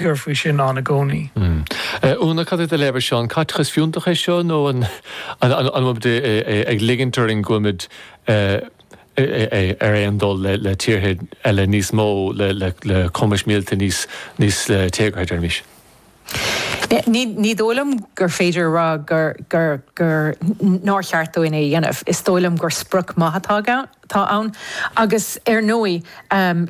cur faoi sin ann i gcónaí. Úna, cad é do léamh ar seo? An caiteachas fiúntach é seo nó an bhfuilimid ag ligint orainn go bhfuilimid ar aon dul le tíortha eile níos mó le cumais míleata níos téagartha, deirimis? Ní dóigh liom gur féidir a rá gur, gur nár cheart dúinn é a dhéanamh. Is dóigh liom gur sprioc maith atá ann. atá ann agus, ar ndóigh,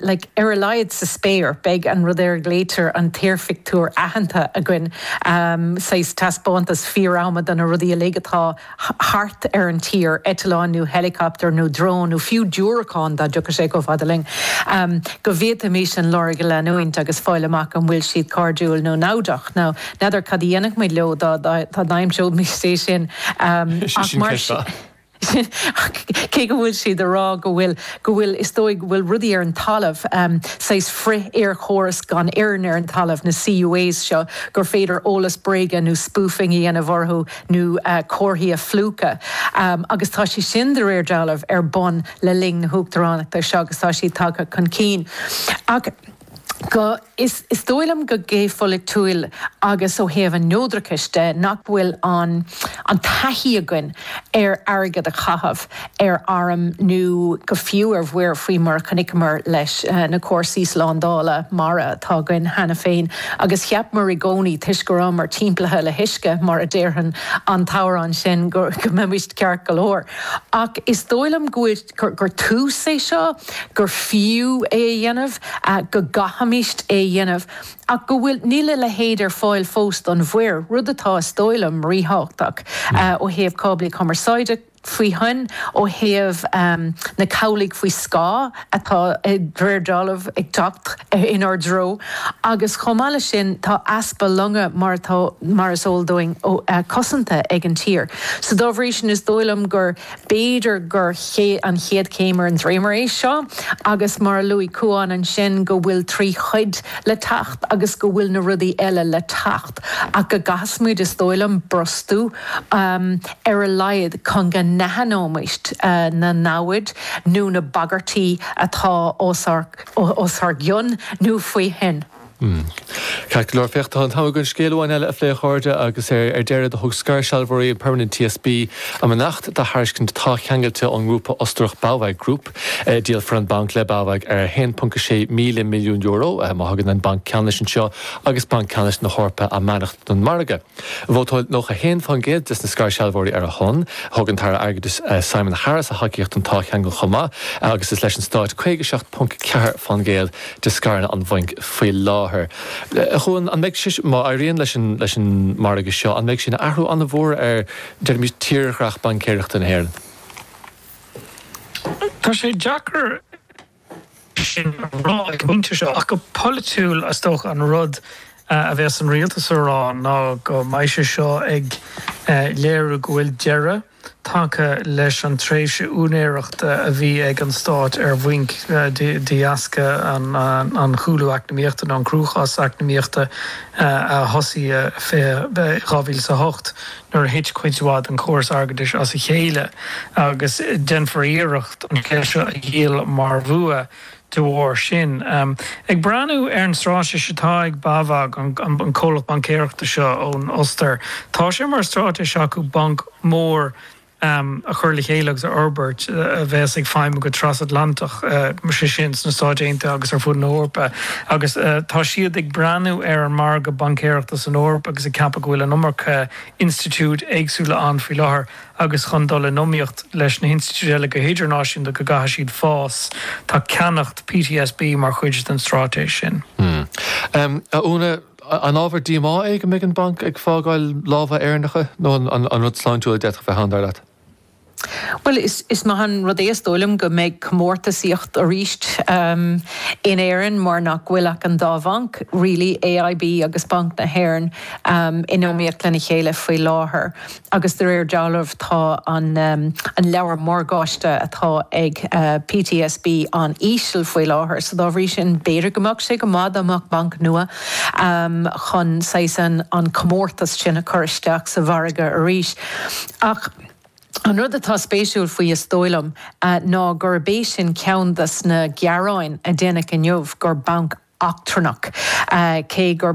like, ar a laghad sa spéir, beidh an rud ar a nglaoitear an t-aerphictiúr aitheanta againn, saghas taispeántas fíor-ama do na rudaí uilig atá thart ar an tír, eitleáin nó heileacaptar nó drón nó fiú diúracán dá dtiocfadh sé chomh fada linn, go bhféadfaimís an lorg a leanúint agus fáil amach an bhfuil siad cairdiúil nó naimhdeach. Now, n'fheadar cad a dhéanfaimis leo dá n-aimseoimís é sin ach mar sin. cé go bhfuil siad a rá go bhfuil, go bhfuil, is dóigh go bhfuil rudaí ar an talamh, saghas frith-aerchóras gan fhoirinn ar an talamh, na CUAS seo, gur féidir eolas bréige nó spoofing a dhéanamh orthu nó comharthaí a phlúchadh. Agus tá sé sin, de réir dealraimh, ar bun le linn na hUachtaránachta seo agus tá siad tagtha chun cinn. Ach. go Is dóigh liom go géopholaitiúil agus ó thaobh an neodrachais de nach bhfuil an-an-taithí againn ar airgead a chaitheamh ar airm nó go fiú ar mhuir faoi mar a chonaiceamar leis na cúrsaí slándála mara atá againn cheana féin agus cheapamar i gcónaí toisc go rabhamar timpeallaithe le huisce mar a déarann an t-amhrán sin go mbeimis ceart go leor ach is dóigh liom go bhfuil gur tús é seo, gur fiú é a dhéanamh, go gcaithfimid é a dhéanamh ach go bhfuil, níl a leithéid ar fáil fós don mhuir, rud atá, is dóigh liom, ríthábhachtach ó thaobh cáblaí cumarsáide faoi thoinn, ó thaobh na cabhlaigh faoi scáth atá de réir dealraimh ag teacht inár dtreo agus chomh maith leis sin tá easpa longa mar atá, mar is eol dúinn, cosanta ag an tír. So dá bhrí sin is dóigh liom gur. B'fhéidir gur an chéad chéim ar an dréimire é seo agus, mar a luaigh Cuán ansin, go bhfuil trí chuid le teacht agus go bhfuil na rudaí eile le teacht ach go gcaithfimid, is dóigh liom, brostú ar a laghad chun go n-aithneoimis na namhaid nó na bagairtí atá os ár gcionn nó faoi thoinn. Ceart go leor, féach, tá an t-am againn aon scéal amháin eile a phlé, a chairde, agus ar deireadh, do thug scairshealbhóirí an Permanent TSB a mbeannacht do thairiscint táthcheangail ón ngrúpa Ostarach BAWAG Group. Díolfar an banc le BAWAG ar €1.6 míle milliún má thugann an Banc Ceannais anseo agus Banc Ceannais na hEorpa a mbeannacht don mhargadh. Vótáil 91% de na scairshealbhóirí ar a shon. Thug an tAire Airgeadais Simon Harris a thacaíocht don táthcheangal chomh maith agus is leis an Stát 57.4% de scaireanna an bhainc faoi láthair. A Chuain, an mbeidh sé, má éiríonn leis an margadh seo, an mbeidh sé ina athrú an-mhór ar, deirimid, tírdhreach baincéireachta na hÉireann? Tá sé deacair sin a rá ag an bpointe seo, ach go polaitiúil is dócha an rud a bheas an rialtas a rá ná go mbeidh sé seo ag léiriú go bhfuil deireadh tagtha leis an tréimhse úinéireachta a bhí ag an stát ar bhainc de dheasca an chúlú eacnamaíochta nó an cruachás eacnamaíochta a thosaigh 2008. nuair a thit cuid mhaith den chóras airgeadais as a chéile agus déanfar iarracht an cheist seo a dhíol mar bhua de bharr sin. Ag breathnú ar an stráitéis atá ag BAWAG, an comhlacht baincéireachta seo ón Ostair, tá sé mar stráitéis acu banc mór a chur le chéile agus a fhorbairt a bheas ag feidhmiú go trasatlantach, sé sin sna Stáit Aontaithe agus ar fud na hEorpa. agus tá siad ag breathnú ar an margadh baincéireachta san Eoraip agus ag ceapadh go bhfuil an iomarca institiúidí éagsúla ann faoi láthair agus chun dul in iomaíocht leis na hinstitiúidí eile go hidirnáisiúnta go gcaithfidh siad fás. Tá ceannacht PTSB mar chuid den stráitéis sin. A Úna, an ábhar díomá é go mbeidh an banc ag fágáil lámha Éireannacha nó an rud sláintiúil a d'fhéadfadh bheith ann, dar leat? Bhuel, is maith an rud é is dóigh liom go mbeidh comórtasaíocht arís in Éirinn mar nach bhfuil ach an dá bhanc really, AIB agus Banc na hÉireann, in iomaíocht lena chéile faoi láthair agus de réir dealraimh tá an leabhar morgáiste atá ag PTSB an-íseal faoi láthair so dá bhrí sin b'fhéidir go mbeadh sé go maith dá mbeadh banc nua ann chun saghas an comórtas sin a chur isteach sa mhargadh arís ach An rud atá spéisiúil faoi is dóigh liom ná gurb é sin ceann de na gearáin a déanadh inniu gur banc eachtrannach, cé gur.